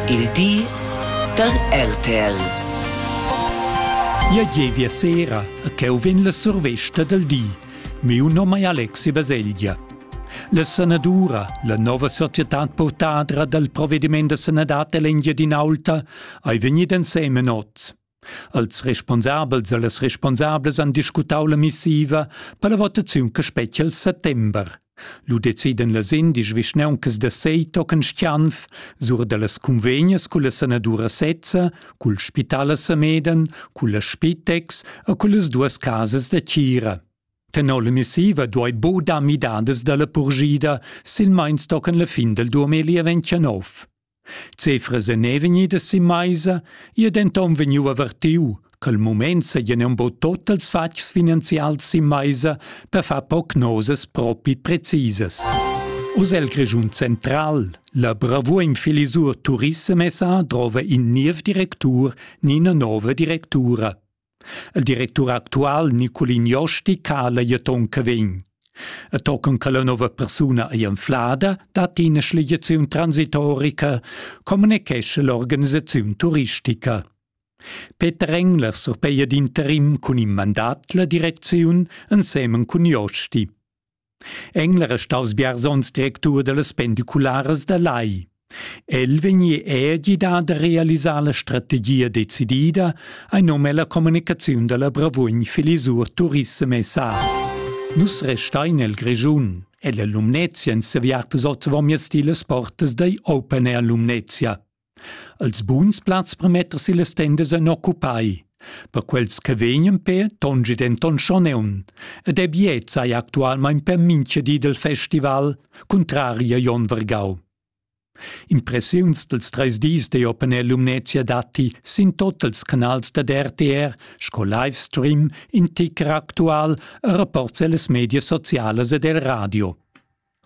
Il di da RTL. Ja gievia sera, ch'eu vegn la survesta del di. Meu nom è Alexi Baselgia. La sanadura, la nova società portadra dal provvediment da sanadad dell'Engiadinaulta, hai vegnit ensemen oz. Als responsabels e las responsables han discutau la missiva per la votaziun che spetga il settember. Lu deciden las indisch vischnauncas da Sei tochen Stianf sur dallas cunvegnas culla sanadura sezza, cul spital a Sameden, culla Spitex e cullas duas casas da tgira. Tenor la missiva duei bo dar midadas dalla purschida, silmeins tochen la fin del 2029. Cefra Zené vegnida si meisa, ei denton vegniu avertiu ch'el mument seigien embo tot els fatgs finanzials sin meisa per far prognosas propi precisas. Oz el Grischun Central, la bravuin Filisur Turissem SA drova in niev directur ni ina nova directura. Il directur actual Niculin Josti cala jeton che vegn. E tocan che la nova persuna ei enflada, dat ina schligiaziun transitorica, communichescha l'organisaziun turistica. Peter Engler surpeia d'interim cun in mandat la direcziun ensemen cun Josti. Engler è staus biars onns directur dallas pendicularas da Lai. El vegni è gidà da realisar la strategia decidida ein num ella communicaziun dalla Bravugn Filisur Turissem SA. Nus restein el Grischun. Ella Lumnezia en seviartas oz vomias ti las portas dai Open Air Lumnezia. Els buns plazs per metter si las tendas en occupai. Per quels che vegnan per tongi denton schon eun, ed è biet sei actualmein per mincha di del festival, contrari a Jon Vergau. Impressiuns dels treis dis de Openel Lumnezia datti sin totals canals da RTR sco livestream in ticker actual e rapports ellas media socialas ed el radio.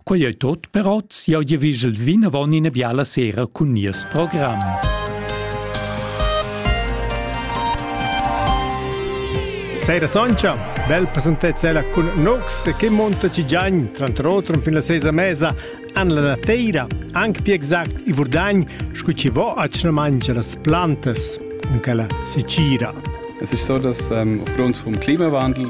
Quei ei tot per oz. Jeu gievigel vinavon ina biala sera cun nies program. Sera Soncia, bel presentezza cun Nox che monta ci giagn, tranter otro fin la sesa mesa, an la nateira, anche più exact i Vurdagn, scu ci vo a ci mangia las plantas, in quella Sicira. Es ist so, dass ähm, aufgrund vom Klimawandel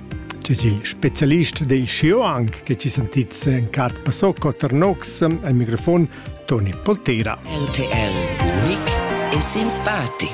Tut il specialist dei Xiuang che ci sentits en Cat Pasocco Ternox al microfon Toni Poltera. RTL unic e simpatic.